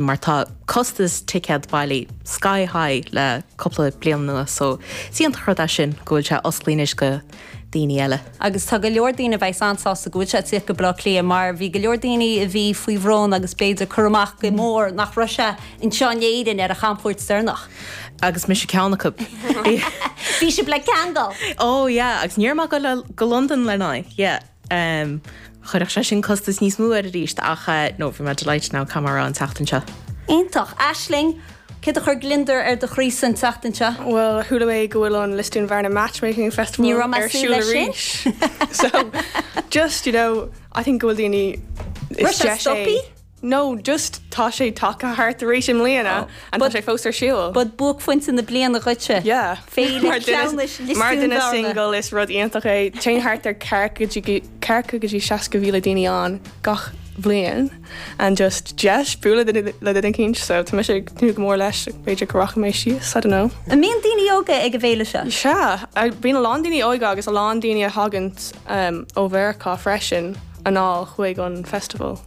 mar tá costas ticéad bailithe sky high le cúpla bliain anuas, so is iontach rud é sin go bhfuil sé osclaí anois go daoine eile. Agus tá go leor daoine a bheidh's an-sásta go bhfuil sé ag tíocht go Baile Átha Cliath mar bhí go leor daoine a bhí faoi bhrón agus b'fhéidir curtha amach go mór nach raibh sé anseo in Éirinn ar a chamchuairt deireanach. Agus mise ceann acu. Bhí sibh ar buile ceangailte? Oh yeah, agus d'imigh mé amach go Londain lena aghaidh, yeah. em. chuirfeadh sé sin costas níos mó air arís ach eh. no, bhí mé delighted now go mór an tseachtain seo. Iontach. Aisling, céard a chuir gliondar ar do chroí-sa an tseachtain seo? Bhuel, chuala mé go bhfuil an Lisdoonvarna Matchmaking Festival Ní raibh mé ag súil ar siúl leis sin. arís. so, just, you know, I think go bhfuil daoine Chuir sé deis é. stopaí? No, just tá sé tagtha thart arís i mbliana and tá sé fós ar siúl. But buaicphointe na bliana dhuitse, Yeah. féile cleamhnais Lios Dúin Mar dhuine Bhearna. single is rud iontach é. Téann thart ar 40 go dtí 60,000 daoine ann gach bliain and just deis bualadh le duine le duine eicínt so tá mise ag tnúth go mór leis b'fhéidir go rachaidh mé síos, I don't know. An mbíonn daoine óga ag an bhféile seo? Sea, a- bíonn a lán daoine óga agus a lán daoine a thagann umm ó Mheiriceá freisin anall chuig an festival.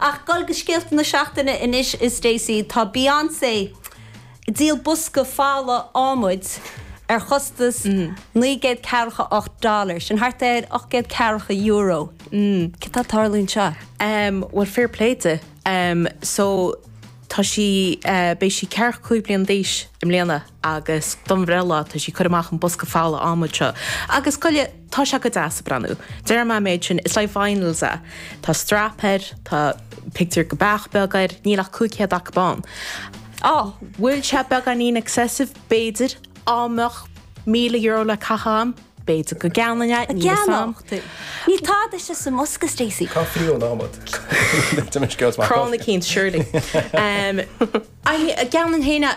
Ach ag dul go scéalta na seachtaine anois, a Stacey, tá Beyonce ag díol bosca folamh adhmaid ar chostas naoi gcéad ceathracha ocht dollar, sin thart ar ocht gcéad ceathracha euro. Céard atá ag tarlú anseo? Bhuel, fair play di. So, tá sí, beidh sí ceathracha cúig bliana d'aois i mbliana. agus don bhreithlá tá sí ag cur amach an bosca folamh adhmaid seo agus go leor tá sé go deas ag breathnú déarfaidh mé an méid sin it's like vinyls a tá strap air tá pictiúr de bheach beag air níl ach 500 acu ann an bhfuil sé beagáinín excessive b'fhéidir dá mbeadh €1000 le caitheamh a'm b'fhéidir go gceannóinn é níl fhios a'm. Níl tada istigh sa mbosca Stacey. Cá bhfuair sí an t-adhmad? D'imir scéal is maith. Crann eicínt surely. Cheannóinn féin é.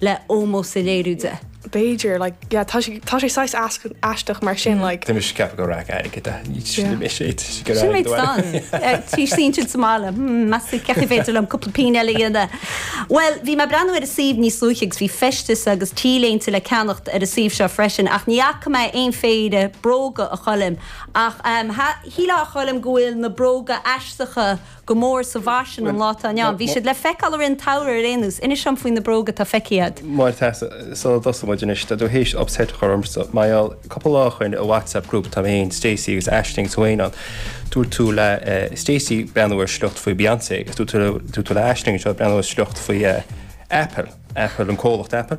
le ómós a léiriú di. B'fhéidir, like, yeah, tá sé, tá sé saghas easca, aisteach mar sin, like. Tá mise ag ceapadh gur raic airgid anois sin mé sé trí go Sin mé stan. Trí cinn sin sa mbaile. Hmm, b'fhéidir go gcaithfidh b'fhéidir liom cúpla pingin eile a dhéanamh. Bhuel, bhí mé ag breathnú ar an suíomh níos luaithe agus bhí feisteas agus t-léinte le ceannacht ar an suíomh seo freisin ach ní fhaca mé aon phéire bróga, a Choilm, ach, ehm, shílfeá, a Choilm, go bhfuil na bróga aisteacha go mór sa bhfaisean an lá atá inniu ann. Bhí siad le feiceáil i rith an tsamhraidh ar aon nós. Inis dom faoi na bróga atá feicthe agat. Maith thú, Sula dtosaíonn muid anois, tá tú théis upset a chur ormsa. Mar gheall, cúpla lá ó shoin, i WhatsApp group atá mé féin, Stacey agus Aisling agus tú féin ann, dúirt tú le Stacey breathnú ar shliocht faoi Beyonce agus dúirt tú le Aisling anseo breathnú ar shliocht faoi Apple, Apple, an comhlacht Apple.